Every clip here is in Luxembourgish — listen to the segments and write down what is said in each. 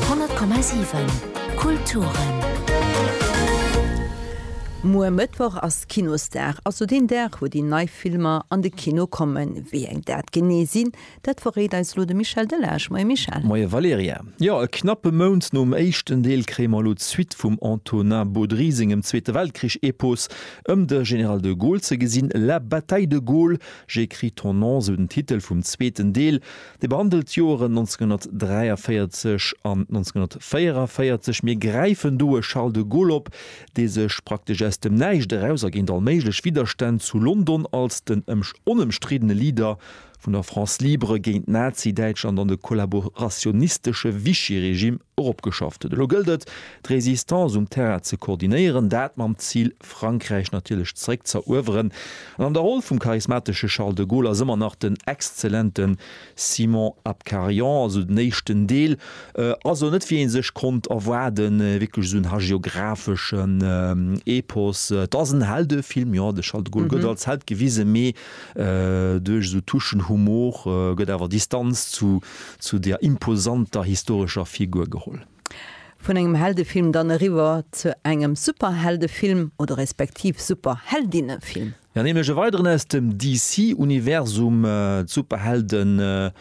100,7 Kulturen. Muer Mëttwoch ass Kinosdag, also deen Dag, wou déi nei Filmer an de Kino kommen. Wéi eng dat genee sinn, dat verréit eis elo de Michel Delage. Moie Michel. Moie Valerija. Jo, e knappe Mount nom éischten Deel kréie mer elo d'Suite vum Antonin Baudry sengem Zweete Weltkrich-Epos ëm de General de Gaulle ze gesinn. La bataille de Gaulle, j'écris ton nom, esou den Titel vum zweeten Deel. Déi behandelt d'Joeren 1943 an 1944. Mir gräifen do e Charles de Gaulle op, dee sech praktesch aus dem Näischt eraus a géint all méiglech Widderstänn zu London als den onëmstriddene Leader vun der France libre géint Nazi-Däitschland an de kollaborationistesche Vichy-Regime eropgeschafft huet. Elo gëllt et, d'Résistance um Terrain ze koordinéieren, dat mam Zil, Frankräich natierlech zréck z'erueweren. An an der Roll vum charismatesche Charles de Gaulle ass ëmmer nach den exzellente Simon Abkarian. Also den éischten Deel ass elo net, wéi ee sech konnt erwaarden, wierklech esou en hagiographesche Epos. Et ass en Heldefilm, jo, de Charles de Gaulle gëtt als Held gewisen, mee Duerch esou Touchen Humor gëtt awer Distanz zu der imposanter historescher Figur geholl. Vun engem Heldefilm dann eriwwer zu engem Superheldefilm, oder respektiv Superheldinnefilm. Jo, nämlech e weideren aus dem DC-Universum, d'Superhelden.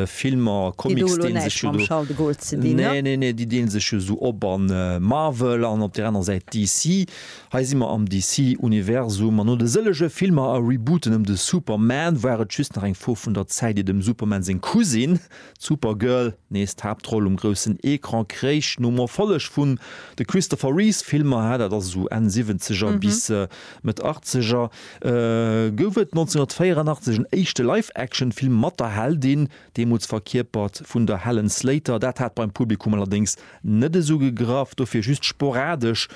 Filmer, Comics deen sech jo do. Déi hu elo näischt mam Charles de Gaulle ze dinn, ne? Nee, nee, nee, déi deelen sech jo esou op a Marvel an op där anerer Säit DC. Hei si mer am DC-Universum an no de sëllege Filmer a Rebooten ëm de Superman war et just nach eng Fro vun der Zäit, ier dem Superman seng Cousine, d'Supergirl, nees d'Haaptroll um groussen Ecran kréich. Nom Erfolleg vun de Christopher Reeves-Filmer, dat ass esou Enn Siwwenzeger bis Mëtt Achtzeger, gouf et 1984 en éischte Live-Action-Film mat der Heldin, deemools verkierpert vun der Helen Slater. Dat hat beim Publikum allerdéngs net esou gegraff, dofir just sporadesch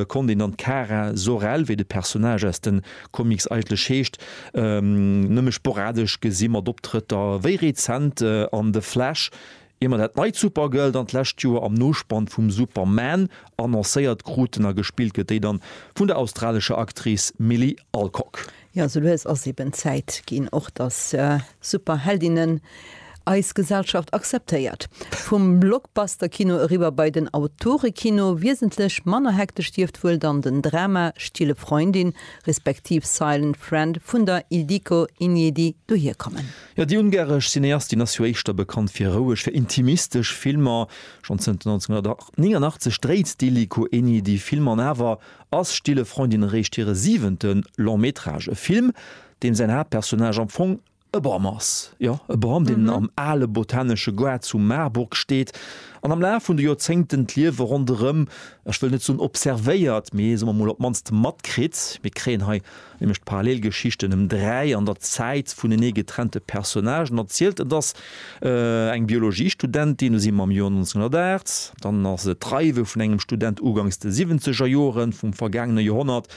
konnt een dann d'Kara Zor-El, wéi de Personnage aus de Comics eigentlech heescht, nëmme sporadesch gesi mat Optrëtter wéi rezent an The Flash, Ier mer dat neit Supergirl dann d'lescht Joer am Nospann vum Superman annoncéiert kruten, a gespillt gëtt déi dann vun der australescher Actrice Milly Alcock. Jo, sou lues ass eben Zäit ginn och, dass Superheldinnen eis Gesellschaft akzeptéiert. Vum Blockbuster-Kino eriwwer bei den Autore-Kino. Wiesentlech manner hektesch dierft wuel dann den Drama Stille Freundin respektiv Silent Friend vun der Ildiko Injedi dohierkommen. Jo, déi ungaresch Cineastin ass jo éischter bekannt fir roueg, fir intimistesch Filmer. Schonn zënter 1989 dréit d'Illikö Eni déi Filmer an awer ass Stille Freundin eréischt hire siwente Long Métrage, e Film, deem säin Haaptpersonnage am Fong e Bam ass. Jo, e Bam, deen am ale botanesche Goart zu Marburg steet an am Laf vun de Joerzéngten d'Liewe ronderëm, ech wëll net soen observéiert, mee soe mer mol op d'mannst matkritt. Mir kréien hei nämlech d'Parallelgeschichten ëm dräi an der Zäit vunenee getrennte Personnagen erzielt. Et ass eng Biologiestudentin, elo si mer am Joer 1908, dann ass et d'Reiwe vun engem Student ugangs de Siwwenzegerjoren vum vergaangene Joerhonnert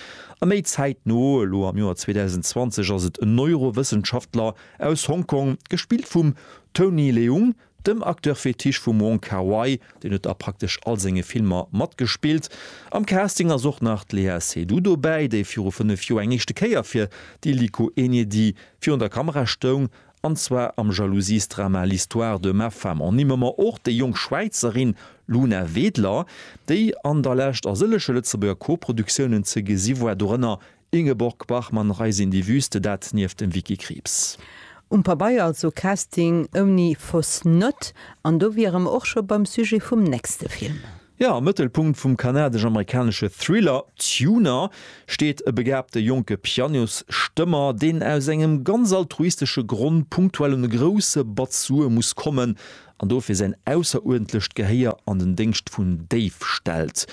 a méi zäitno, elo am Joer 2020, ass et en Neurowëssenschaftler aus Hong Kong, gespillt vum Tony Leung, Dem Acteur fétiche vum Wong Kar-wai, deen huet a praktesch all senge Filmer matgespillt. Am Casting ass och nach d'Léa Seydoux dobäi, déi viru 5 Joer eng éischte Kéier fir d'Iliko Enyedi virun der Kamera stoung, an zwar am Jalousiesdrama L'histoire de ma femme. Ernimme mer och déi jonk Schwäizerin Luna Wedler, déi an der Lescht a sëlleche Lëtzebuerger Koproduktiounen ze gesi war, dorënner Ingeborg Bachmann Reis in die Wüste, dat nieft dem Vicky Krieps. Um Pabeier also Casting ouni fausse note. An do wiere mer och scho beim Sujet vum nächste Film. Jo, am Mëttelpunkt vum kanadesch-amerikanesche Thriller Tuner steet e begabte jonke Pianosstëmmer, deen aus engem ganz altruistesche Grond punktuell un e grousse Batz Sue muss kommen an dofir säin ausseruerdentlecht Gehéier an den Déngscht vun Dave stellt.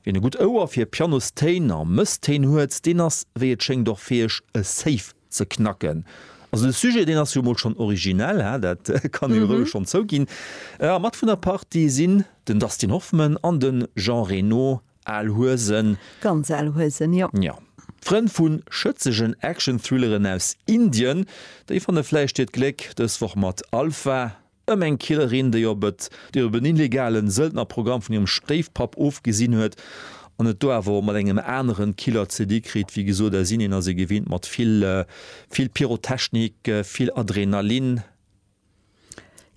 Wien e gutt Ouer fir Pianostéin a Mësstéin huet, deen ass wéi et schéngt och fäeg e Safe ze knacken. Also de Sujet deen ass jo mol schonn originell, hä, dat kann ee jo roueg schonn zouginn. A mat vun der Partie sinn den Dustin Hoffman an de Jean Reno, al Huesen. Ganz al Huesen, jo. Jo. Frënn vu schëtzegen Action-Thrilleren aus Indien, déi fanne vläicht hiert Gléck dës Woch mat Alpha. Ëm eng Killerin, déi op et déi op en illegalen Sëldnerprogramm vun hirem Stéifpapp ofgesinn huet an et do awer och mat engem aneren Killer ze di kritt. Wéi gesot, a Sinn, hien ass ee gewinnt mat vill, vill Pyrotechnik, vill Adrenalin.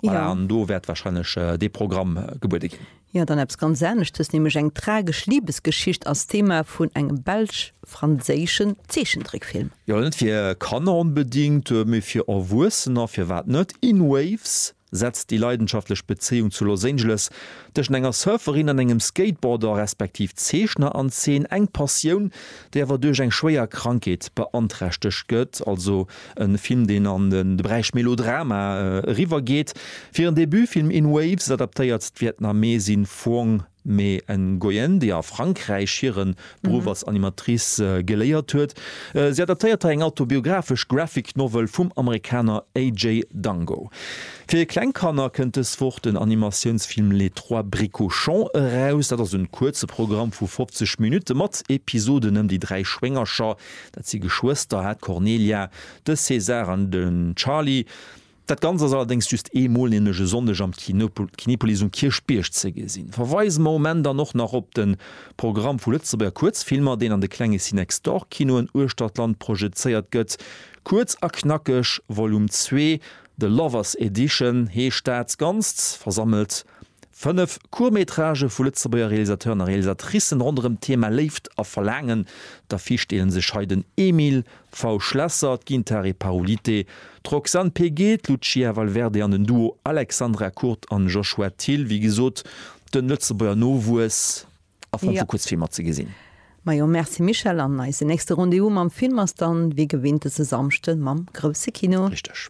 Voilà, an do wäert warscheinlech dee Programm gebuede ginn. Jo, dann eppes ganz aneschtes, nämlech eng tragesch Libesgeschicht als Thema vun engem belsch-franséischen Zeechentrickfilm. Jo, net fir Kanner onbedingt, mee fir Erwuessener, firwat net? In Waves setzt déi leidenschaftlech Bezéiung zu Los Angeles tëschent enger Surferin an engem Skateboarder respektiv Zeechner an Zeen, eng Passioun, déi awer duerch eng schwéier Krankheet beanträchtegt gëtt. Also. E Film, deen an de Beräich Melodrama eriwwergeet. Fir en Debutfilm In Waves adaptéiert d'Vietnamesin Phuong Mê Nguyen, déi a Frankräich hire Beruff als Animatrice geléiert huet. Si adaptéiert hei eng autobiographesch Graphic Novel vum Amerikaner AJ Dango. Fir kleng Kanner kënnt dës Woch den Animatiounsfilm Les trois bricochons eraus. Dat ass en kuerze Programm vu 50 Minutte mat Episoden ëm déi dräi Schwéngercher, Dat si Geschwëster, hat d'Cornelia, de César an de Charly. Dat Ganzt ass allerdéngs just ee Mol, nämlech e Sonndeg am Kinopolis um Kierchbierg ze gesinn. Verweise mer um Enn dann och nach op de Programm vu Lëtzebuerger Kuerzfilmer, deen an de klenge Cinexdor-Kinoen uechter d'Land projezéiert gëtt. Kuerz a knackeg, Volume zwee, The Lovers Edition heescht dat Ganzt, versammelt Fënnef Court-métragë vu Lëtzebuerger Realisateuren a Realisatricen ronderëm d'Thema Léift a Verlaangen. D'Affiche deele sech hei den Emile V. Schlesser, d'Gintare Paolite, d'Roxane Peguet, d'Lucia Valverde an den Duo Alexandra Kurt an Joshua Thill. Wéi gesot, de Lëtzebuerger Nowuess a Form vu Kuerzfilmer ze gesinn. Majo, Merci Michel, an eise nächste Rendez-vous mam Film ass dann wéi gewinnt dëse Samschden mam Grousse Kino. Richteg.